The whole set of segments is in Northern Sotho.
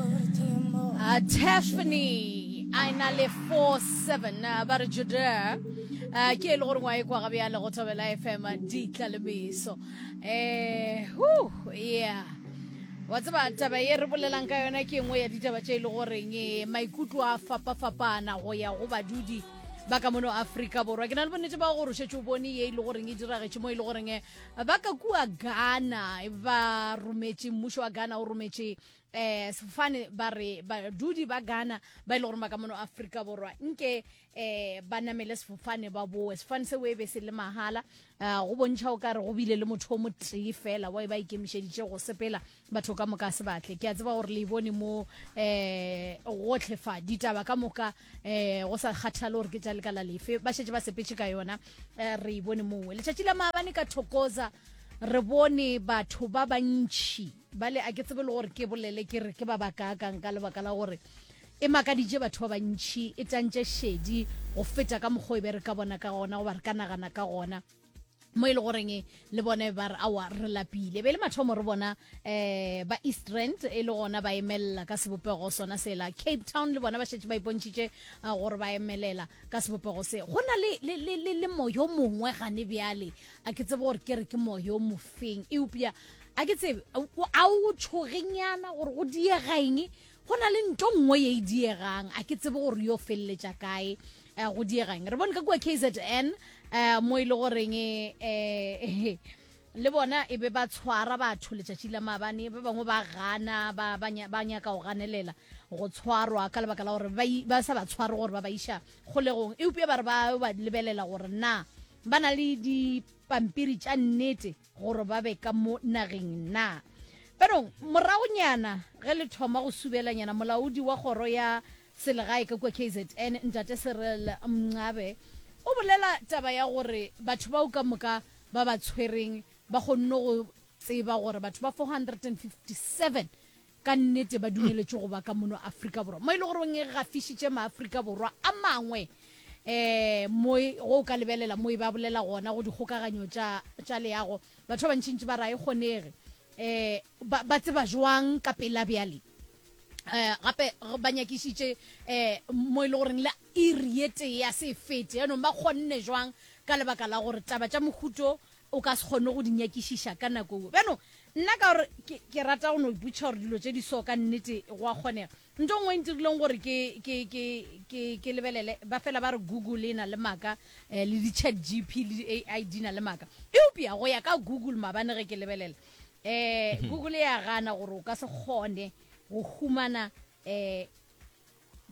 Uh, Tiffany a e na le 47 uh, ba re juda uh, ke e le gore ngwa e kwa gabe ya lego thobela fm ditlalemeso eh hu yeah wa tseba taba ye re bolelang ka yona ke engwe ya ditaba tše e le goreng eh, maikutlo a fapa-fapana go ya go badudi ba ka mono aforika borwa ke na le bonnete ba gore o šetse o bone ye e le goreng e diragetše mo e le goreng eh, ba ka kua ghana ba rometše mmušo wa ghana o rometše eh sefofane ba re badudi ba Ghana ba ile gore ba ka mono Afrika borwa nke eh ba namele sefofane ba boe sefofane se webe se le mahala ah, go bontšha o kare go bile le motho o motee fela wa e ba ikemišeditše go sepela batho ka moka se batle ke a tseba gore le e bone mo eh gotlhe fa ditaba ka moka eh go sa kgathale gore ke tša lekala lefe ba šetse ba sepetše ka yona eh, re e bone mowe letšatši la maabane ka thokoza re bone batho ba bantšhi bale a ke tsebe le gore ke bolele ke re ke ba bakaakang ka lebaka la gore e makaditše batho ba bantšhi e tantše šedi go feta ka mokgwa e be re ka bona ka gona goba re ka nagana ka gona mo e le goreng e, le bone ba re awa re lapile be le mathomo re bona um ba east rand e le gona ba emelela ka sebopego sona sela cape town le bona ba šetse ba ipontšhitše gore ba emelela ka sebopego se go na le moyo mongwe gane bjale a ke tsebe gore ke re ke moya o mofeng eupša a ke tsebe a o tshogenyana gore go diegaeng go na le nto nngwe ye e diegang a ke tsebe gore yo feleletša kae um go diegang re bone ka kua k z n um mo e le goreng um le bona e be ba tshwara batho letšatši la mabane ba bangwe ba gana ba nyaka go ganelela go tshwarwa ka lebaka la gore ba sa ba tshware gore ba ba iša kgolegong eupša ba re ba lebelela gore na Ba na le dipampiri tša nnete gore ba be ka mo nageng na? Jaanong, moragonyana ge le thoma go subelanyana, molaodi wa kgoro ya selegae ka kua KZN, Ntate Cyril Mncwabe, o bolela taba ya gore batho bao ka moka ba ba tshwereng ba kgonne go tseba gore batho ba 457 Ka nnete ba dumeletšwe go ba ka mono Afrika Borwa, mo e le goreng e gafišitše Maafrika Borwa a mangwe um mo e, go o ka lebelela mo e ba bolela gona go dikgokaganyo tša tša leago. Batho ba bantšintši ba re ga e kgonege. Um ba, ba tseba jwang ka pela bjale? um gape re ba nyakišitše um mo e le goreng le iri ye tee ya se e fete, yaanong ba kgonne jwang ka lebaka la gore taba tša mohuto O ka se kgone go di nyakišiša ka nako ewe. Bjano, nna ka gore ke, ke rata go no ipotšiša gore dilo tše di so ka nnete go a kgonega. Ntho e nngwe e ntirileng gore ke, ke, ke, ke, ke lebelele, ba fela ba re Google e na le maaka, eh, le di-ChatGP le di-AI di na le maaka. Eupša go ya ka Google, maabane ge ke lebelela, eh, Google e a gana gore o ka se kgone go humana, eh,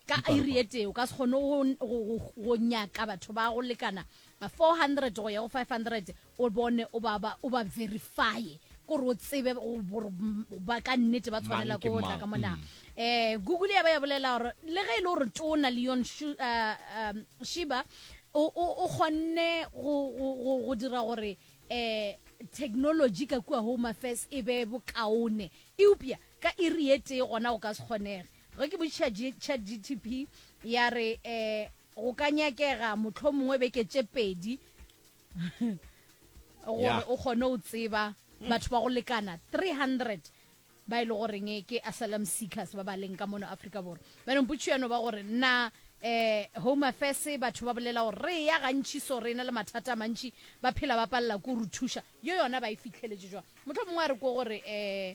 Ka iri e tee o ka se kgone go, go, go, go nyaka batho ba go lekana 400 go ya go 500 o bone o ba, ba, o ba verifye kore o tsebe go- gore m- ba ka nnete ba tshwanela Mang ke ko go tla mang? ka mona eh google ya ba ya bolela gore le ge e le gore tona leon Shu- uh, um, shiba o o- o kgonne go go- go- go dira gore eh technology ka kua home affairs e be bokaone eupša ka iri e tee gona go ka se kgonege Ge ke botšiša ChatGTP, ya re, um Go ka nyakega mohlomongwe beke tše pedi gore Ya. o kgone go tseba batho ba go lekana 300 ba e le goreng ke asylum seekers ba ba leng ka mono Afrika Borwa. Bjanong potšišo ya no ba gore na um Home Affairs batho ba bolela gore re ya gantši so re na le mathata a mantši ba phela ba palela ko re thuša yo yona ba e fitlheletše jwang. Mohlomongwe a re ko gore um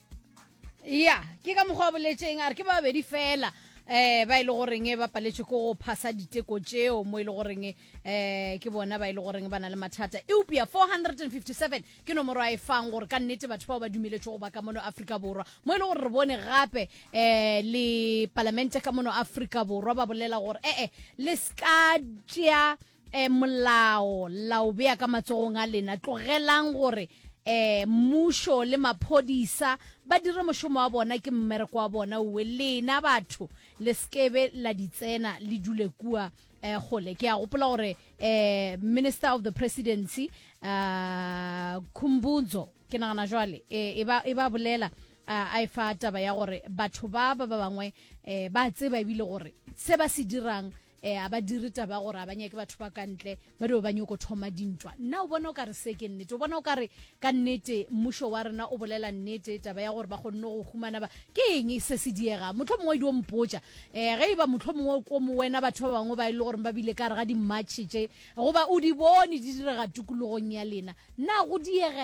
ya ke ka mokgwa wa boletseng a re ke ba babedi fela eh ba ile e goreng e ba paletše ko go phasa diteko tšeo mo ile e goreng eh ke bona ba ile e goreng ba na le mathata eupša 457 ke nomoro a e fang gore ka nnete batho bao ba dumeletšwe go ba ka mono afrika borwa mo ile e gore re bone gape eh le palamente ka mono afrika borwa ba bolela gore ee eh, le ska tšea E, molao la o bea ka matsogong a lena. Tlogelang gore e, mmušo le maphodisa ba dire mošomo wa bona, ke mmereko wa bona uwe. Lena batho le sekebe la di tsena le dule kua e, gole. Ke a gopola gore e, Minister of the Presidency a, Khumbudzo ke nagana jwale e, e, ba, e ba bolela a, a e fa taba ya gore batho ba ba ba bangwe e, ba tseba ebile gore se ba se dirang E, a ba dire taba gore a ba nyake batho ba ka ntle ba dio ba nyoko thoma dintwa nna o bona o ka re se ke nnete o bona o ka re ka nnete mmušo wa rena o bolela nnete taba ya gore ba kgonne go humana ba ke eng se se diega motlho mongwe dio mpotša um ge e ba motlho mongwe ko mo wena batho ba bangwe ba e le gore ba bile ka re ga dimmatšhe tše goba o di bone di direga tokologong ya lena nna go diega